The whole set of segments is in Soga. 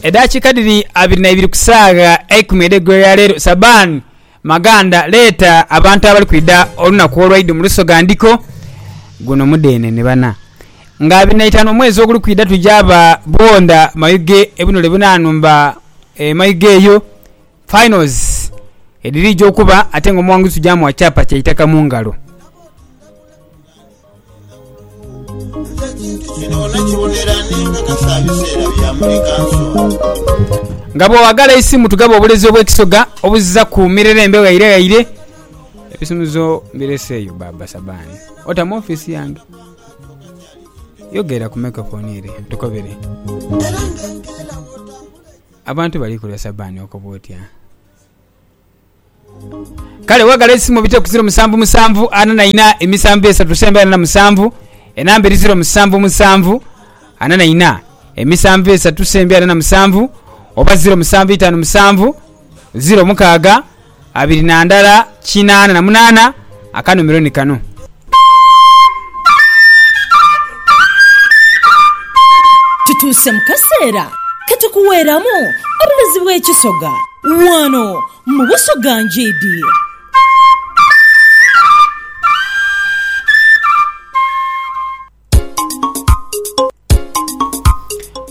Edaakiika dhiri abiri na ibiri ku saagha eikumi edh'eigulo lya leero, Sabaani Maganda leeta abantu abali kwidha olunaku olwaidho mu Lusoga Ndhiko. Guno mudheenene bana. Nga abiri na itaanu omwezi oguli kwidha twija ba Bwondha Mayuge ebunule buna nhumba e Mayuge eyo. Finals edhirija okuba ate nga omuwanguzi tuja muwa kyapa kya itaka mu ngalo. Nga bw'owagala eisimu tugaba obulezi obw'ekisoga obuziza ku mirerembe ghaire ghaire. Ebisumuzo mbireseeyo Baaba Sabani. Ota mu ofiisi yange? Yogera ku microphone ere tukobere. Abantu bali kulya Sabani oko butya? Kale wagala eisimo bite ku ziro musanvu musanvu ana na ina emisanvu esatu semba ena na musanvu enamba eri ziro musanvu musanvu ana na ina emisanvu esatu semba ena na musanvu oba ziro musanvu itanu musanvu ziro mukaaga abiri na ndala kinaana na munaana. Akanuumiro ni kano. Tutuuse mu kaseera ke tukuweeramu obulezi bw'ekisoga wano mu Busoga Njiidi.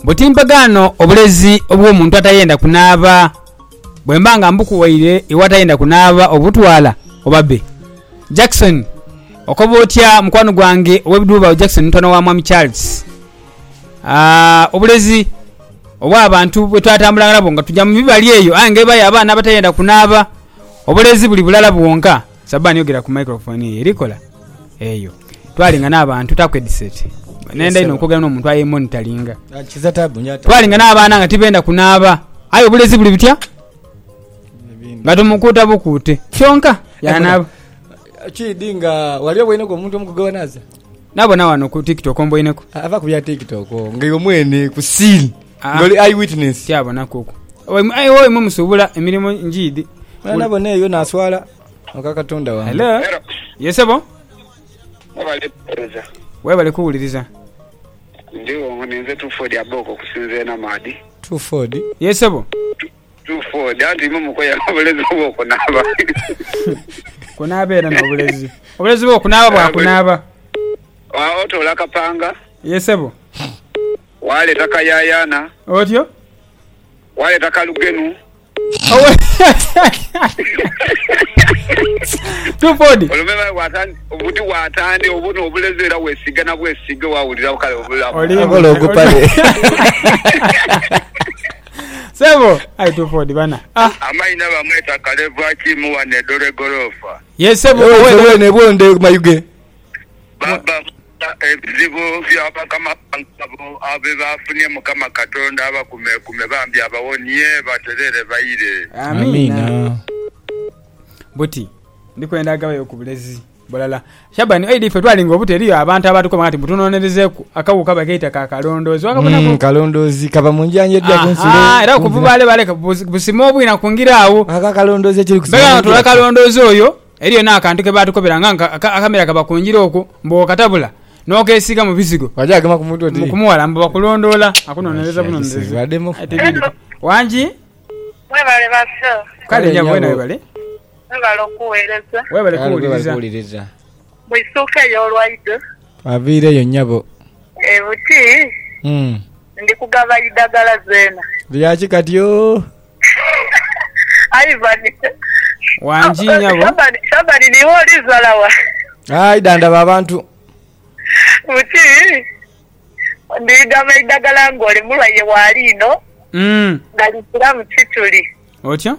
Buti mpagaano obulezi obw'omuntu atayenda kunaaba? Bwe mba nga mbukuwaire iwe atayenda kunaaba obutwala oba be? Jackson, Okoba otya mukwano gwange ow'ebiduubawo Jackson mutabane wa Mwami Charles. Aa, obulezi obw'abantu bwe twatambulanga nabwo nga tuja mu mibali eyo aye nga ebayo abaana abatayenda kunaaba, obulezi buli bulala bwonka. Sabani yogera ku microphone eyo erikola eyo twalinga nabantu taku headset nenda ino okwogera nomuntu aye monitoringa twalinga nabaana nga tibenda kunaaba aye obulezi buli butya nga tumukuuta bukuute kyonka yanaaba kidi nga wali oboineko omuntu omu kugewanaza Nabona wano ku tiktok omboineku. Aa va ku bya tiktok oo nga iwe mwene ku scene nga oli eye witness. Tyabonaku okwo aye oyo mwe musubula emirimo njiidhi. Mala nabona eyo naswala oka katonda wange. Hello ye sebo. Mwebale kuwereza. Webale kuwuliriza. Ndio ninze Tuford Aboko okusinza enamaadhi. Tuford. Ye sebo. Druford, anti imwe mukoya n'obulezi obw'okunaaba. Kunaaba era n'obulezi. Obulezi bw'okunaaba bwa kunaaba. Agho toola akapanga. Ye sebo. Waaleeta kayaayaana. Otyo. Waaleeta kalugenu. Owe. Druford. Olume bae waatandika, obuti waatandika, obwo n'obulezi era weesiiga na bwesiige waawulira kale obulamu. Oli. Okola ogupale. Sebo aye tufodi bana ah. Amaina bamweta kalevu akimu wano edoro egoloofa. Yes sebo Ewe owe wena ebwonde mayuge. Baba mukama ebizibu bya bakama bange abo byebafunye mukama katonda abakumekume bambi abawonie baterere baire. Amiina. Amiina. Buti ndikwenda agabayo ku bulezi. Bulala. Shaban aidha ife twalinga obuto eriyo abantu abatukoba nga ti mbu tunonerezeku akagho kaba keita ka kalondoozi wakabonaku? Mm kalondoozi kava mu njanjo edhia ku nsulo. Ahaa era okuva bale bale busime obwina ku ngira agho. Ako akalondoozi ekiri kusima Mbega nga tuli akalondoozi oyo eriyo n'akantu ke baatukobera nga akamera kaba ku ngira okwo mbu bw'okatabula n'okesiiga mu bizigo Wagyagema ku mutwe oti. kumuwala mbu bakulondoola akunonereza Asha kiseghe bunonerezi. wademu. Aye tibindhi. Wangi? Mwebale ba show. Kale Kale nyabo wena nyabo. webale. Mwebale okuweereza. Weebale kuwuliriza. Mwisuukeyo olwaidho. Twaviireyo nnyabo. E buti ndi kugaba idagala zeena. Lya ki kati ooh. Ivan, Wangi nyabo. Shabani, Niiwe oli zala wa? Aye da ndaba abantu. Buti ndi gaba idagala ng'oli mulwaire wa liino nga likiramu kituli. Otyo.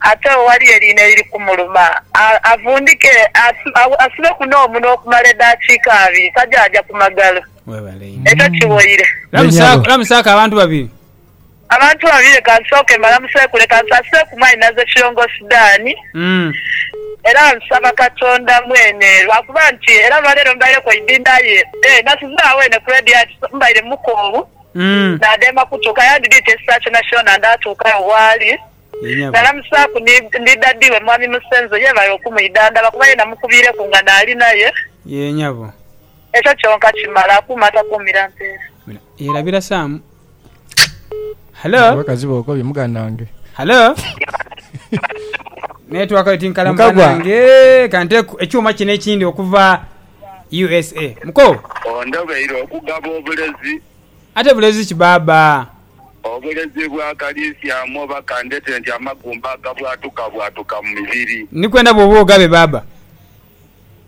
Ate agho ghaliyo eliina eliri kumuluma, avundhike asibeku n'omunwa okumala edaakiika abiri, tajaaja ku magalo. Ekyo kiwoire. Lamusaku abantu babiri. Abantu babiri leka nsooke mbalamuseeku. Leka nsaasireku Mwanyinaze Kirongoosi Dan. Era nsaba Katonda mwene lwa kuba nti era olwaleero mbaireku eidhindha aye nasizaagho eno ku leediyo aye mbaire mukoowu nadheema kutuuka. Yandidhite ekiseera kyonakyona ndaatuuka agho bw'ali. Nalamusaaku ni daddy we Mwami Musenzo yeebale okumwidhandhaba kuba ye namukubiireku nga naali naye. Yee nyabo. Ekyo kyonka kimala. Akuume atakuumira mpeera. Yeerabira Sam. Halo. Abakazi bokobye muganange. Halo. Network yo tinkalamu banange. Kante ekyuma kino ekindi okuva usa. Muko. Ondobeire okugaba obulezi. Ate bulezi ki baaba. Obulezi bwa kaliisiamu oba kandhete nti amagumba agabwatukabwatuka mu mibiri. Ni kwenda bwoba ogabe baaba.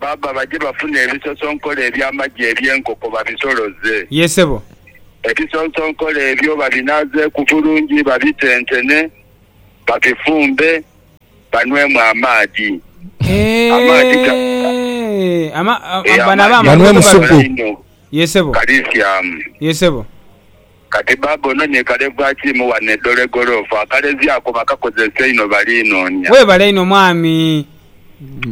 Baaba baje bafune ebisosonkole eby'amagi eby'enkoko babisoloze. Yee ssebo. Ebisosonkole ebyo babinaazeeku bulungi babitentene, babifumbe, banwemu amaadhi. Amaadhi ga. Eehh. Ama, a, Eeh, bano aba amaadhi ago amaadhi ago banwemu supu. galainho Yee ssebo. kaliisiamu. Yee ssebo. Kati baaba ono ni kale bwakiimu wano e Dole Golofu akalezyaku bakakozesa einho baliinoonia. Webale inho mwami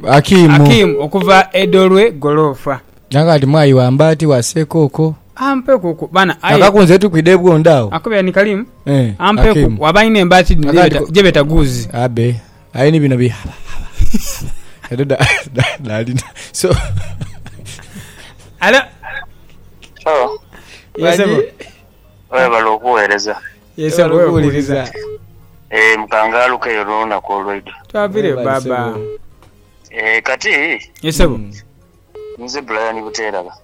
Akim okuva e Dolwe Golofa. Nange kati mwayi wamba ati wase koko. Ampe kuku bana aye. Akakunze tukwide bwondo awo. Akubera ni kalimu. Ampe kuku waba ayina embaati dhino jebeta guuzi. Abe. Aye ni bino bye Edo dhaalina. So. Alo. Alo. Yes, sebo. Webale okuweereza. Yes, sebo. Okuwuliriza. Eh, mukangaaluka eyo n'olunaku olweidho. Twavire baba. Eh, kati. Yes, sebo. Nze Brian Buteeraba.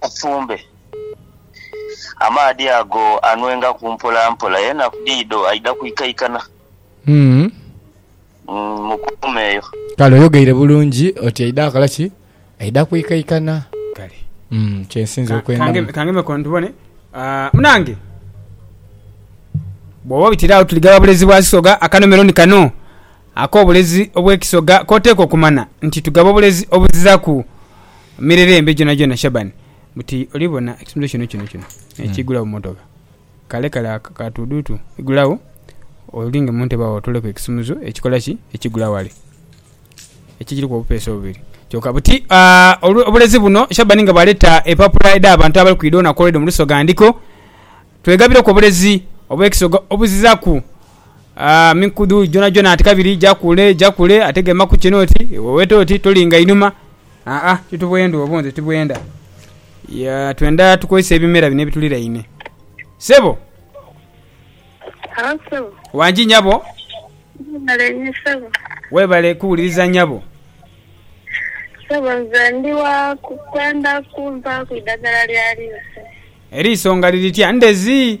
Asumbe amaadhi ago anwengaku mpolampola, aye enaku dhidho aidha kwikaikana. Mukuume eyo. Kale oyogeire bulungi oti aidha kola ki? Aidha kwikaikana. Kale. Kyensinze okwendamu. Kangemeko ntubone. Munange, bwoba obitira agho tuli gha Bulezi bwa Sisoga, akanomero ni kano. Ak'obulezi obw'ekisoga k'oteekwa okumana nti tugaba obulezi obuziraku mirerembe gyonagyona. Shaban, buti oli bona ekitundu kino kino kino n'ekiigula mu mmotoka, kale kale akatuuduutu, igulagho olinge mu ntebe agho otoleku ekisumuzo ekikola ki? Ekigula ghale, ekigiriku obupeesa obubiri kyoka. Buti obulezi buno, Shaban nga bw'aleeta empapula edh'abantu abali kwidha olunaku olw'eidho mu lusoga, ndhiko, Twegabireku obulezi obw'ekisoga obuziraku. mikudhu gyonhagyonha ati kabiri ja kule ja kule ate gema ku kino oti wewete oti tolinga inhuma aa ti tubwendha obwo nze tibwendha. Yaa twendha tukozese ebimera bino ebituliraine. Ssebo, Halo sebo. wangi nyabo? Mwebale inho sebo. Webale kuwuliriza nyabo. Sebo nze ndi wa ku- kwenda kumpaaku idagala lya liiso. Eriiso nga liri tya? Ndhezi?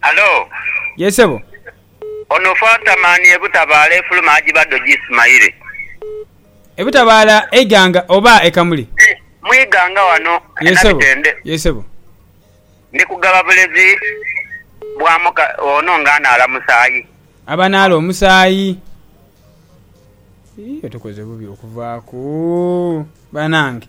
Hallo. Yee sebo. Ono fata mani ebutabaala efuluma ajiba dho jismaile. Ebutabaala eiganga oba e Kamuli? Mwiganga wano e Nabitende. Yee sebo. Ndi kugaba bulezi bwa muka ono nga anaala musaayi. Abanaala omusaayi. Yii otukoze bubi okuvaaku banange.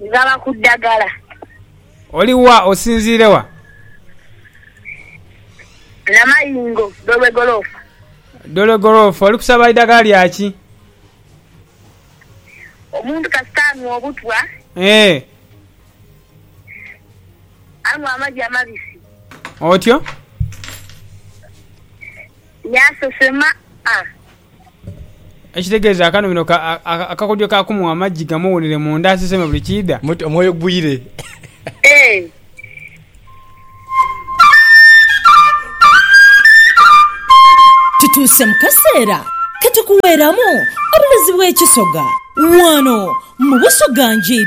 Ghaba ku ddagala. Oli wa? Osinziire wa? Namayingo, Dolwegoloofa. Dolwegoloofa. Oli kusaba idagala lya ki? Omuntu kasita anhwa obutwa, Eeh. anhwa amagi amabisi. Otyo. Yaasesema a. Ekitegeeza akano bino akakodyo ka kumugha amagi gamuwunire munda aseseme buli kiidha. Muti omwoyo gwire. E. Tutuuse mu kaseera ke tukuweeramu obulozi bw'ekisoga wano mu Busoga Nji.